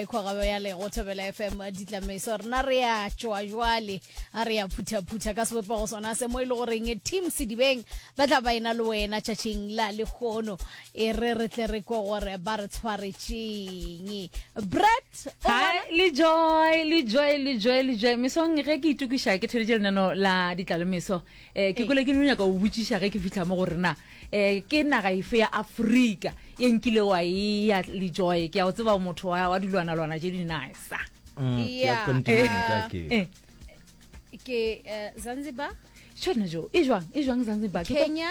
e kgogabo ya lego thobela fm ditlameso rena re ya tšoa jwale a re ya phuthaphutha ka sebopego sona se mo e le goreng team sedibeng ba tla ba ena le wena tšatšing la lekgono e re re tle re kwe gore ba re tshwaretšeng bret le joy le joy le joy le joy mesong ge ke itukiša ke theleditše lenano la ditlalemeso um ke kole ke no nyaka go botšiša ge ke fitlha mo gore na um ke naga efe ya afrika e nkile wa eya le joy ke ya go tseba motho wa wa dilwanalwana tše dinisa Mm, ke ya Yeah. continent a ke. Eh. ke eh, zanzibar tšhone jo e jwang e jwang zanzibar Ke ko- kenya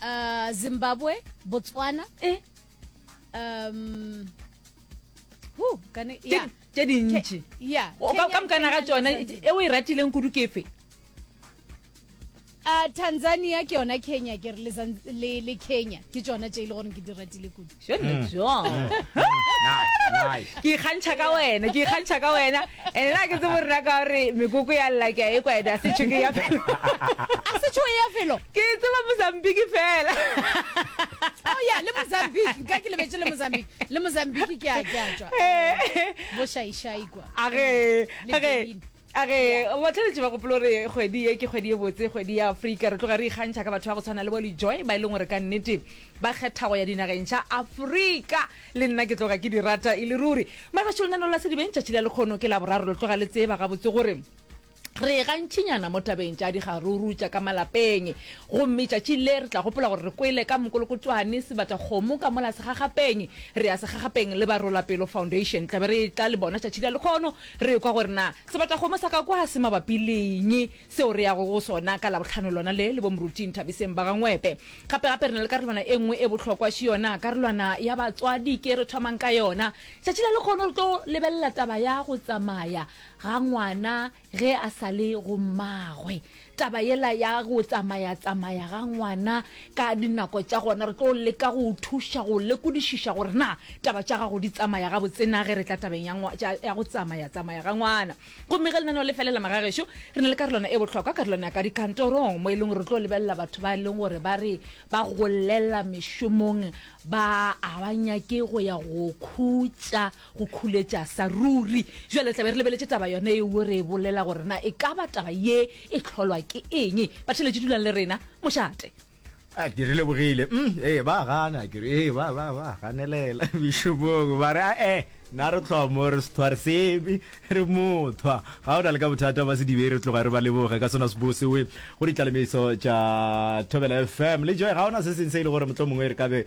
uh, zimbabwe botswana Eh. um who, kana, yeah. tše dintši ka mokana ga tsona e o e ratileng kudu kefe a tanzania ke yona kenya ke re le kenya ke tsona tse e le gore ke di ratile kudu hmm. hmm. ke ikgantšha ka wena ke ikgantšha ka wena and na ke tsebo rena ka gore mekoko ya lla ke a e kwena a setsho ke ya felo a setsho e ya felo ke tseba mozambiki fela oh ya le mozambiki ka ke lebetse le mozambiki le mozambique ke a ke a tšwa bošaišai kwa age Le age Benin. age batlhaletši ba gopolo re kgwedi e ke kgwedi e botse kgwedi ya afrika re tloga re ikgantšha ka batho ba go tshwana le bo lejoy ba e leng gore ka nnete ba kgetha go ya dinageng tša afrika le nna ke tloga ke di rata e le ruri magašo lenano la sedibeng tšatši la lekgono ke la boraro lo tloga le tseba gabotse gore Re gantšinyana mo tabeng tša digaruru tša ka malapeng, gomme tšatši le re tla gopola gore re kwele ka mokolokotswane sebata kgomo ka mola segagapeng. Re ya segagapeng le Barolapelo Foundation. Tla be re etla le bona tšatši la lekgono, re ekwa gore na sebata kgomo sa ka kwa se mabapi le'ng seo re yago go sona ka Labohlano lona le, le Bomoruti Nthabiseng ba ga Ngwepe. Gape gape re na le karolwana e nngwe e bohlokwa, še yona karolwana ya batswadi ke re thomang ka yona. Tšatši la lekgono re tlo lebelela taba ya go tsamaya ga ngwana ge a sa le go mmagwe taba yela ya go tsamaya tsamaya ga ngwana ka dinako tša gona re tlo leka go thuša go lekodišiša gore na taba tša gago di tsamaya ga botsena ge re tla tabeng ya go tsamaya tsamaya ga ngwana gomme ge lenaneo le felela magagešo re na le karolwana e bohlokwa karolwana ya ka dikantorong mo e leng gore re tlo lebelela batho ba e leng gore ba re ba golela mešomong ba a ba nyake go ya go khutša go khuletša sa ruri jale tlabe re lebeletše taba yone eo re e bolela gore na e ka ba taba ye e tlholwa ke eng batheletše dulang le rena mošate a ke re lebogile mm, ee ba gana ke re ee ba ba ba ganelela bishopong ba re a e na re tlhoa mo re sethwa re sebe re mothwa ga o na le ka bothata ba sedibe re tloga re ba leboge ka sona sebose we go ditlalemetso tša thobela fm le joe ga ona se seng se e le gore motlho mongwe re ka be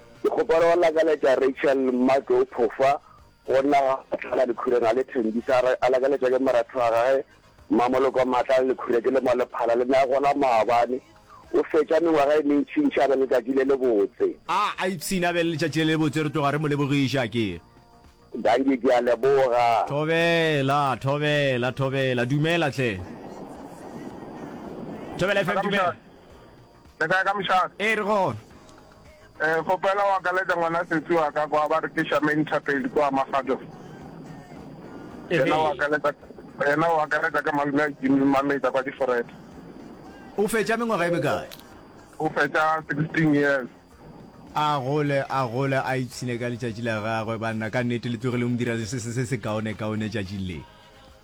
Ke kgopela go lakaletša Rachel Mmatlou phofa go nna ga Matlala Lekhureng a le thembisa a re a lakaletšwa ke moratho wa gage Mmamoloko Matlala Lekhureng ke le mo Lephala le ne a gola maabane. O fetša mengwaga e mentši ntši a be le letšatši le lebotse. A a ipshine a be le letšatši le lebotse re tloga re mo lebogiša ke. Dankie ke a leboga. Thobela, Thobela, Thobela, dumela hle. Thobela FM dumela. Le kae ka mošate? Ee, re gona. Eh, kgopela wa ka leta ngwana setsi wa ka kwa ba re ke Charmaine Thapedi kwa Magato. Yena wa ka leta yena wa ka leta ka malume a Jimmy Mameta kwa Diforete. O fetša mengwaga e mekae? O fetša 16 years. A gole, a gole, a ipshine ka letšatši la gagwe. Banna, ka nnete le tlogile go mo dira se se se se kaone-kaone tšatšing le.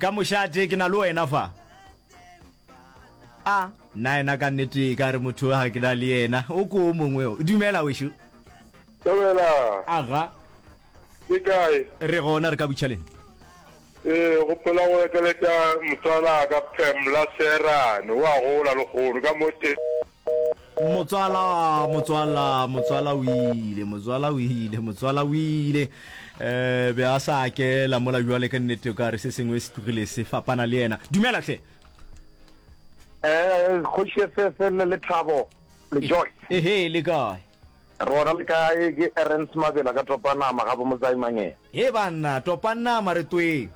ka mošate ke na le wena fa a na ena ka nnete e ka re motho ga ke na le yena o ko o mongwe o dumela wešo Dumela. aga Ke kae? re gona re ka butšhaleng Ee, go phela go ekeletša motswala ka Pamela Serane. O a gola lehono ka mo te. Motswala, motswala, motswala o ile, motswala o ile, motswala o ile. Eh, be a sa ke la mola jwale ka nnete ka re se sengwe se tlogile se fapana le yena. Dumela hle. Eh, kgoši efefe le le thabo le joy. Ehe, le kae? Rona le kae ke Erens Mabela ka Topanama ga bo Mozaimangeng. He banna, Topanama re tweng.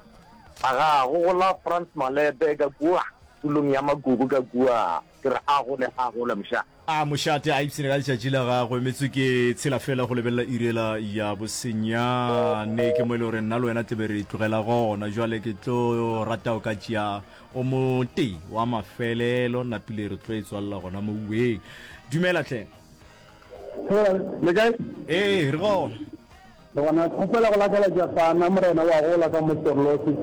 Aga go gola France Malebe ka kua tulong ya Magugu ka kua. Ke re a gole, a gole moša. A mošate a ipshine ka letšatši la gagwe. Metswe ke tshela fela go lebelela iri yela ya bosenyane. Ke mo e le gore nna le wena tle be re tlogela gona. Bjale ke tlo rata o ka tšea o motee wa mafelelo. Nna Pule re tlo e tswalela gona mo uweng. Dumela tlhe. Hela, le kae? Ee, re gona. Le gona kgopela go lakela Jafana Morena wa gola ka mo Torlosi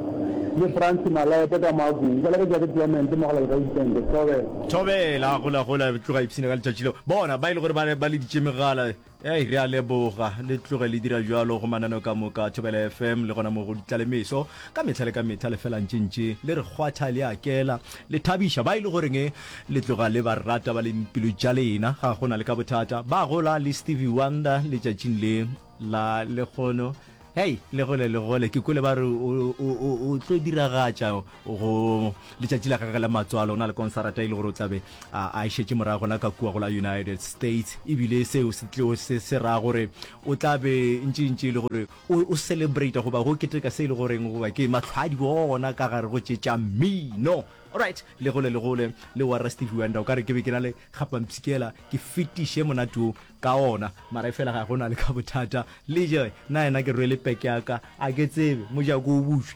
le Fransi Malepe ka mo Agwini. Ke lakeja ke Clemente Mogala le Gaitente Thobela. Thobela, gola gola, tloga ipshina ka letšatši leo. Bona, ba e le gore ba, ba leditše megala. Ei, re a leboga. Le tloge le dira bjalo go mananeo ka moka a Thobela FM le gona mo go Ditlalemeso. Ka mehla le ka mehla le fela ntše-ntše le re kgwatha le a kela, le thabiša ba e le goreng Le tloga le ba rata ba leng pelo tša lena, ga go na le ka bothata. Ba gola le Stevie Wonder letšatšing le la lekgono. Hei, le gole le gole. Ke kwele ba re o, o, o, o tlo diragatša go letšatši la gagwe la matswalo, o na le konsarata e le gore o tlabe a, a e šetše morago gona ka kua go la United States, ebile seo se tlo se, se ra gore o tla be ntše ntše e le gore o, o celebrata goba go keteka se e le goreng goba ke mahlwadi ona ka gare go tše tša mmino. Alright, le gole le gole le warra Stevie Wonder, o ka re ke be ke na le kgapampshikela ke fetiše monate wo ka ona, mara e fela ga go na le ka bothata. Lejoy na yena ke rwele peke ya ka, a ke tsebe mojako o bušwe.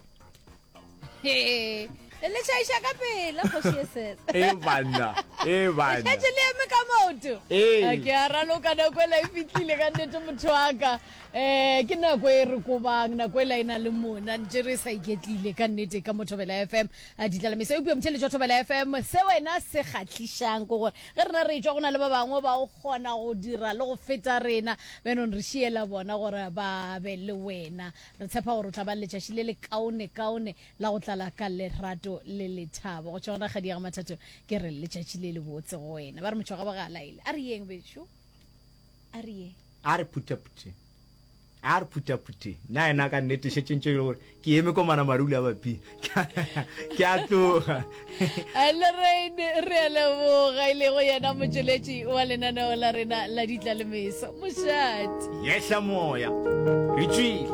Hee, le šaiša ka pela kgoši e sesa. E banna, e banna. Le šetše le eme ka maoto. Ee. A ke a raloka nako ela e fitlile ka nnete motho wa ka. Eh, ke nako e re kobang, nako ela e na le mona, ntše re sa iketlile ka nnete ka Mothobela FM. A di tlalamisa eupša motšheletšwa Thobela FM, se wena se kgahlišang ke gore ge rena re etšwa go na le ba bangwe ba o kgona go dira le go feta rena, beenong re šiela bona gore ba be le wena. Re tshepa gore o tla ba le letšaši le le kaone kaone la go tlala ka lerato le lethabo. Go tšwa gona Kgadi ya ga Mathato ke re letšatši le le botse go wena. Ba re Motšwagabo ga a laele. A re yeng bešo? A re yeng? A re phuthaphuthe A re phuthaphuthe, na yena ka nnete šetše ntše e le gore ke eme ko manamarule a baping ke a tloga lorraine re a leboga e lego yena motšweletši wa lenaneo la rena la ditlalemeso mošate yehla moya re tšwile